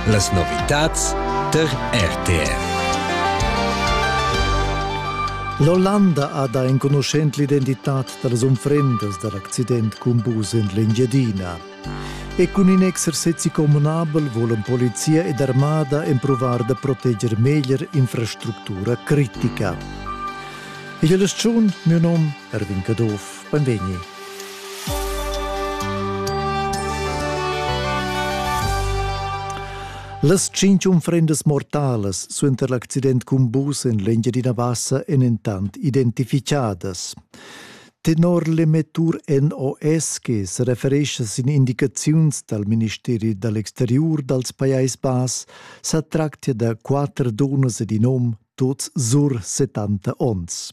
Las novitads tar RTR. L'Ollanda ha da enconuschent l'identitad da las unfrendas da l'accident cun bus en l'Engiadina. E cun in exercezi communabel volan polizia ed armada empruvar da proteger meglier infrastructura critica. Igl è schun, mio nom Erwin Caduff. Benvegni. Las tschintg unfrendas mortalas suenter l'accident cun bus en l'Engiadina Bassa èn entant identificadas. Tenor l'emettur NOS che se referescha sin indicaziuns dal Ministeri dall'exteriur dals Pajais Bass, sa tractia da quatter dunnas ed in um, tuts sur 70 onns.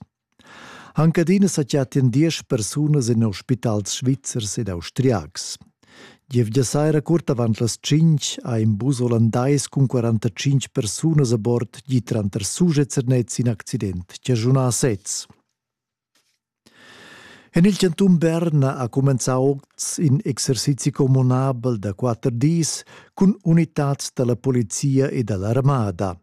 Anc adina sa chattian diesch persunas en ospitals svizzers ed austriacs. Gievgia saira curt avant las 5 ha in bus olandais cun 45 persunas a bord gi tranter sujet Sernez in accident chaschunà a sez. En il canton Bern ha cumenzà oz in exercizi communabel da quatter dis cun unitads da la polizia e da l'armada.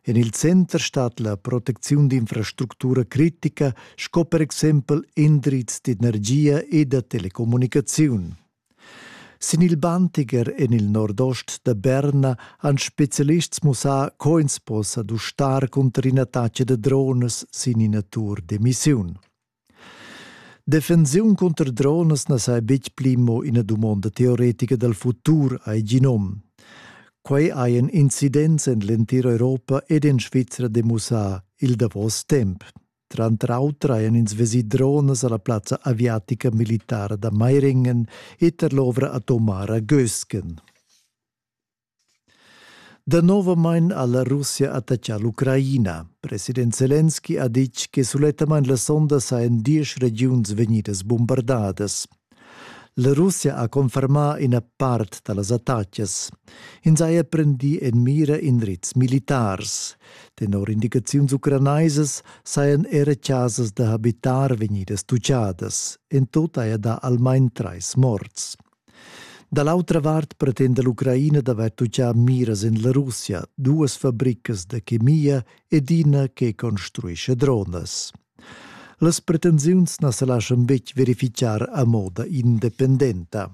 En il center stat la protecziun d'infrastructura critica sco per exempel indrizs d'energia e da telecommunicaziun. Sin il Bantiger en il nordost da Berna han spezialists mussà co ins possa dustar cunter ina taccia da drones sin ina tur d'emissiun. Defensiun cunter dronas na sai betg pli mo ina dumonda teoretica dal futur, hai gì nom. Quai hajan incidents en l'entira Europa ed en Svizra demussà il davos temp. Tranter auter hajan ins vesì dronas a la plazza aviatica militara da Meiringen e tar l'ovra atomara Gösken. Danovamain ha la Russia attaccà l'Ucraina. President Zelensky ha ditg che sulettamain la sonda sajan diesch regiuns vegnidas bumbardadas. La Russia ha confermà ina part da las attacas. Ins haja prendì en mira indrizs militars. Tenor indicaziuns ucranaisas sajan era chasas da habitar vegnidas tutgadas. En tut haja dà almain trais morts. Da l'autra vart pretenda l'Ucraina d'avair tutgà miras en la Russia, duas fabricas da chemia ed ina che construisce dronas. Las pretensiuns na sa laschan betg verifichar a moda independenta.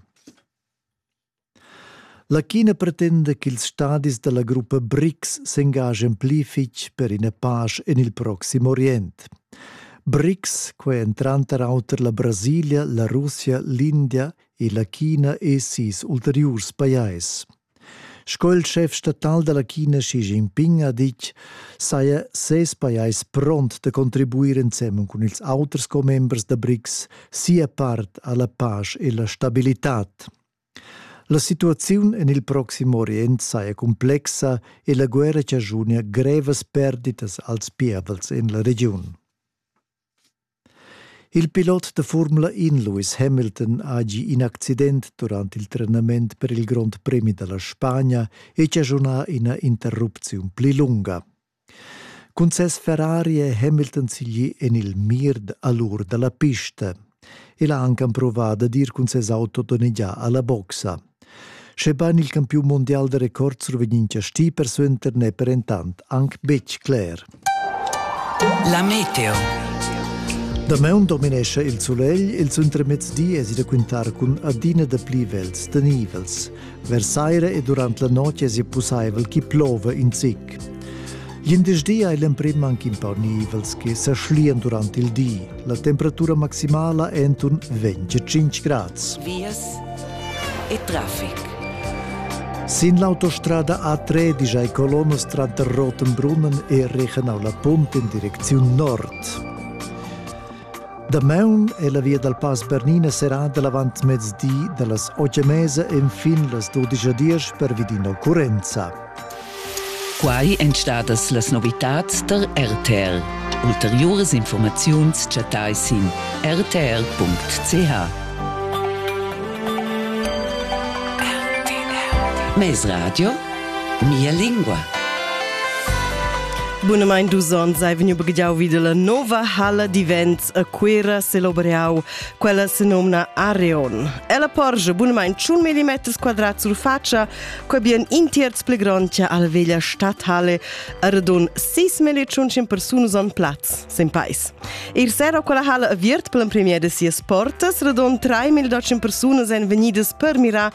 La China pretenda ch'ils stadis da la gruppa BRICS s'engagen pli fitg per ina pasch en il proxim Orient. BRICS, quei ein tranter auter la Brasilia, la Russia, l'India e la China e sis ulteriurs pajais. Sco il chef statal dalla China Xi Jinping ha ditg, saja ses pajais pront da contribuir ensemen cun ils auters commembers da BRICS sia part alla pace e la stabilitad. La situaziun en il Proxim Orient saja cumplexa e la guerra chaschunia grevas perditas als pievels en la regiun. Il pilot da Formula 1 Lewis Hamilton ha gì in accident durant il trenament per il Grond Premi da la Spagna e chaschunà ina interrupziun pli lunga. Cun ses Ferrari è Hamilton siglì en il mir a l'ur da la pista. El ha anc empruvà dad ir cun ses auto donnegià a la boxa. Schebain il campiun mundial da record survegnin chastì persuenter n'è per entant anc betg cler. La meteo. Damaun dominescha il sulegl, ils intermezdi èsi da quintar cun adina dapli vels tenivels. Vers saira e durant la notg èsi pussaivel ch'i plova in zic. Glindesdi ha l'emprim anc in pau nivels che sa schlian durant il di. La temperatura maximala è enturn 25 grads. Vias e traffic. Sin l'autostrada A13 hai colonnas tranter Rotenbrunnen e Regenau la Punt in direcziun nord. Damaun è la via dal Pass Bernina serrada l'avantmezdi da las otg e mesa enfin las dudisch a diesch pervi d'ina occurrenza. Quai èn stadas las novitads tar RTL. Ulteriuras informaziuns chattai sin rtl.ch. Mezradio Mia lingua. Bunamain dus onns hai vegniu baghiau vid la nova halla d'events a Cuira celebreau, quella se nomna Areon. Ella porgia bunamain tschun millimeters quadrat sur faccia, co bien in tierz pli grondia alla veglia stadhalle, a radun 6.100 persunus on plaz, sin pais. Ir sera quella halla aviert per l'empremier de sias portas, radun 3.200 persunus ein vegnidas per mirar